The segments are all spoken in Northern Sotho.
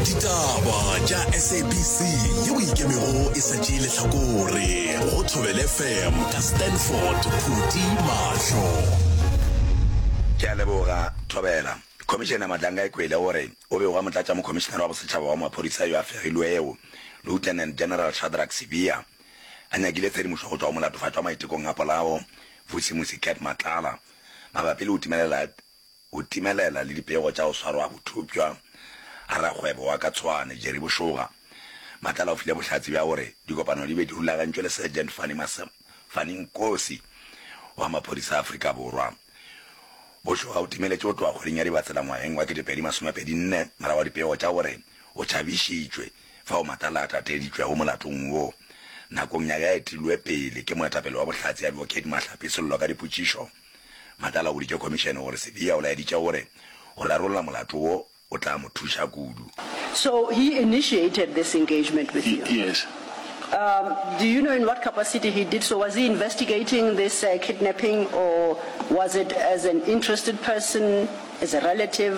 Ditaba tša SABC yeo e ikemego e sa tšee lehlakore go Thobel FM ka Stanford Phuti Mahlo. Ke a leboga, Thobela. Khomišene Madlanga Ekwele o re o be o ba motlatšamokhomišenare wa bosetšhaba wa maphodisa yo a fegilwego, Lieutenant General Shadrack Sibiya, a nyakile tshedimošo go tšwa go molatofatšwa maitekong a polao, Vusimusi Cat Matlala, mabapi le go timelela O timelela le dipego tša go swarwa bothopšwa ga rakgwebo wa ka Tshwane, Jerry Bošoga. Matlala o file bohlatse bja gore dikopano di be di rulagantšwe le Sergeant Fanny Massa, Fanny Nkosi, wa maphodisa a Afrika Borwa. Bošoga o timeletše go tloga kgweding ya Dibatsela ngwageng wa 2024 morago ga dipego tša gore o tšhabišitšwe fao Matlala a tateditšwego molatong wo nakong ya ge a etilwe pele ke moetapele wa Bohlatse Advocate Mahlapi Sello ka dipotšišo Madala o boditše khomišene gore Sibiya o laeditše gore go rarolla molato wo o tla mo thuša kudu. So he initiated this engagement with you? Yes. Um, do you know in what capacity he did so? Was he investigating this uh, kidnapping or was it as an interested person, as a relative?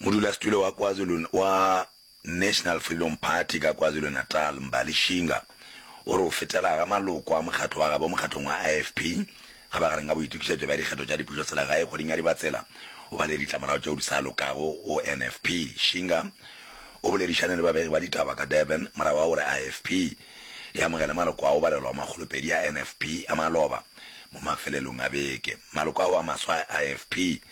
Modulasetulo wa KwaZulu wa National Freedom Party ka KwaZulu-Natal, Mbali Shinga, o re o fetela ga maloko a mokgatlo wa gabo mokgatlong wa IFP ga ba gareng ga boitokišetšo bja dikgetho tša dipušoselegae kgweding ya Dibatsela o ba le ditlamorago tšeo di sa lokago go NFP. Shinga o boledišane le babegi ba ditaba ka Durban morago ga gore IFP e amogele maloko a go balelwa go makgolopedi a NFP a maloba mo mafelelong a beke. Maloko ao a maswa a IFP,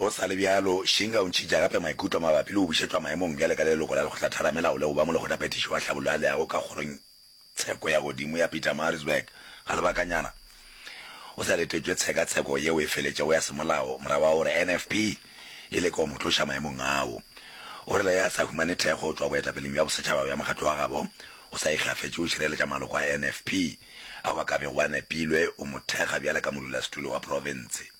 Go sa le bjalo, Shinga o ntšhitša gape maikutlo mabapi le go bušetšwa maemong bjale ka leloko la Lekgotlatheramelao le go ba Molekgotlaphethiši wa Tlhabollo ya Leago ka Kgorong tsheko ya Godimo ya Pietermaritzburg ga lebakanyana o sa letetšwe tshekatsheko yeo e feletšego ya semolao morago ga gore NFP e leke go mo tloša maemong ao. O rile ge a sa humane thekgo go tšwa boetapeleng bja bosetšhaba bja mokgatlo wa gabo, o sa ikgafetše go šireletša maloko a NFP ao a ka bego a nepilwe go mo thekga bjale ka modulasetulo wa profense.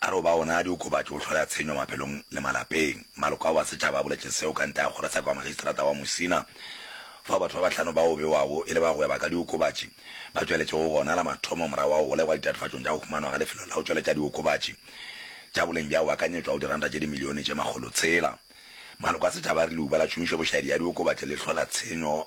A re o ba ona diokobatši go hloya tshenyo maphelong le malapeng. Maloko ao a setšhaba a boletše seo ka ntle ga kgorotsheko ya Magistrata wa Musina fao batho ba bahlano bao bewago e le ba go gweba ka diokobatši ba tšweletšego gona la mathomo morago ga go golegwa ditatofatšong tša go humanwa ga lefelo la go tšweletša diokobatši tša boleng bja go akanyetšwa go diranta tše dimilione tše makgolotshela. Maloko a setšhaba a re leuba la tšhomišo bošaedi ya diokobatši le hlola tshenyo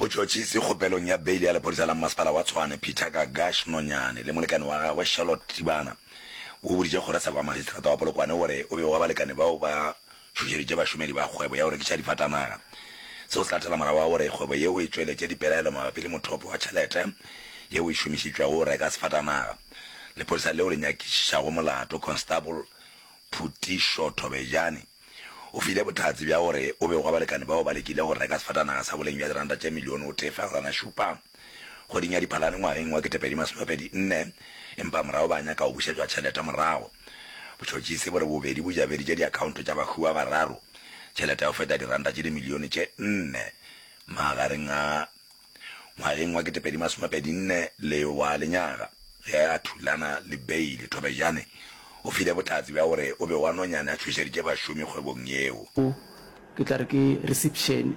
Botšhotšhisi kgopelong ya beili ya lephodisa la mmasepala wa Tshwane Peter Gagash Nonyane le molekane wa gagwe Charlotte Tibana bo boditše kgorotsheko ya magistrata wa Polokwane gore o be wa balekane bao ba tšhošeditše bašomedi ba kgwebo ya go rekiša difatanaga seo se latela morago wa gore kgwebo yeo e tšweletše dipelaelo mabapi le mothopo wa tšhelete yeo e šomišitšwego go reka sefatanaga Lephodisa leo le nyakišišago molato Constable Phutišo Thobejane O file bohlatse bja gore o bego wa balekane bao ba lekile go reka sefatanaga sa boleng bja diranta tše milione o tee fegelwana šupa kgweding ya Diphalane ngwageng wa ketepedi masome pedi nne, empa morago ba nyaka go bušetšwa tšhelete morago. Botšhotšhisi bo re bobedi bo jabeditše diakhaonto tša bahuwa bararo tšhelete ya go feta diranta tše dimilione tše nne magareng a ngwageng wa ketepedi masomepedi nne le wa lenyaga, ge a thulana le Bailey, Thobejane o file botlatsi bja gore o be wa nonyane a tšhošeditše bašomi kgwebong yeo. O, ke tla re ke resipšene.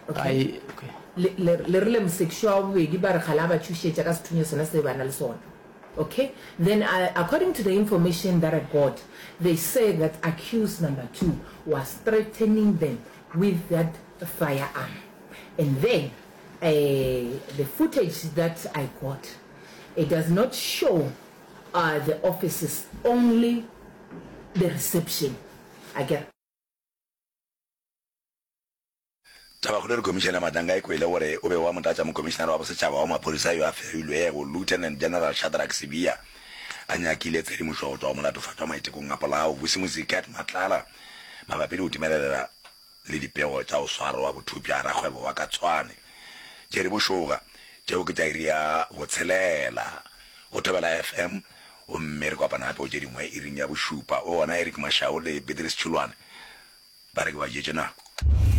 Okay. I, okay. Le, le, le rile mosekišo wa bobedi ba re kgale a ba tšhošetša ka sethunya sona se ba na le sona. Okay. Then I, according to the information that I got, they said that accused number two was threatening them with that firearm. And then uh, the footage that I got, it does not show uh, the offices, only the reception. I get. tabakgolo re komišene matanga e kwele gore o be wa motlatša mokomišenare wa bosetšhaba wa maphodisa yo a ferilwego lieutenant general shadrack sebia a nyakile tshedimošo go tswa go molatofatšwa maitekong a polao vusi mosikat matlala mabapi le go timelelela le dipego tša go swarwa bothupša rakgwebo wa ka Tshwane, Jerry Bošoga, tšeo ke tša iri ya botshelela go Thobela FM, gomme re kopana gape go tše dingwe iring ya bošupa, go gona Eric Mashau le Beatrice Tšholwane ba re ke ba jetše nako.